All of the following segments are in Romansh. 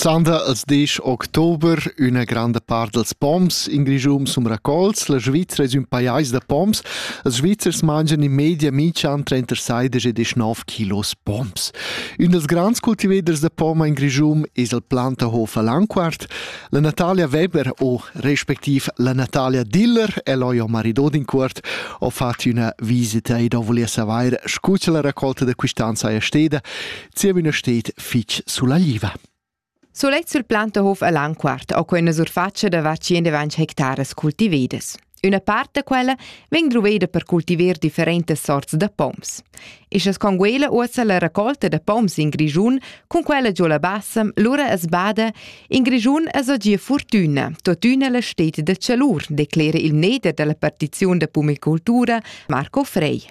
Sanda als 10 october üna granda part dels poms in Grischun sun raccolts. La Svizzera es ün pajais da poms. Els Svizzers mangian in media mincian trenta saidas e deschnov kilos poms. Ün dels grands cultiveders da poma in Grischun es il Plantahof a Lanquart. La Natalia Weber o respectiv la Natalia Diller el ho jo maridodincuort ho fat üna visita ed ho vulia savair, scu cha la raccolta da quist'an saja steda. zievüna stet fich sulla liva. Sulet sul Plantahof a Lanquart ho quella surfatscha da var 120 hectares cultivedas. Üna part da quella vegn druveda per cultiver differentas sorts da poms. Ischas con quella uossa la raccolta da poms in Grischun, cun quella giò la Bassam, lura as bada, in Grischun as ho gia fortüna, totüna la stet da chalur, declera il mneder della partiziun da pumicultura Marco Frey.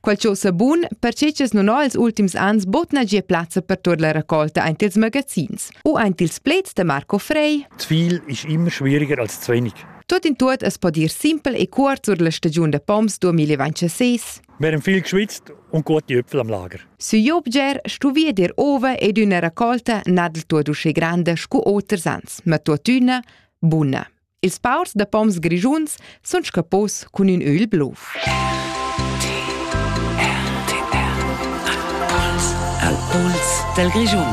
Quel cho sa bun, perche cha's nun ho ils ultims ans bod nagia plazza per tuot la raccolta aint ils magazins u aint ils pleds da Marco Frey. Zwil ist immer schwieriger als zu wenig. Tot in tuot es po dir simpel e cuort sur la stagiun da poms 2026. Wir haben viel geschwitzt und gute Äpfel am Lager. Su Jobger stu via dir ova ed üna raccolta nadel tuot usche grande scu oters ans, ma tuottüna buna. Ils paurs da poms grischuns sun scappos cun ün ögl blov. Al pols dal Grischun.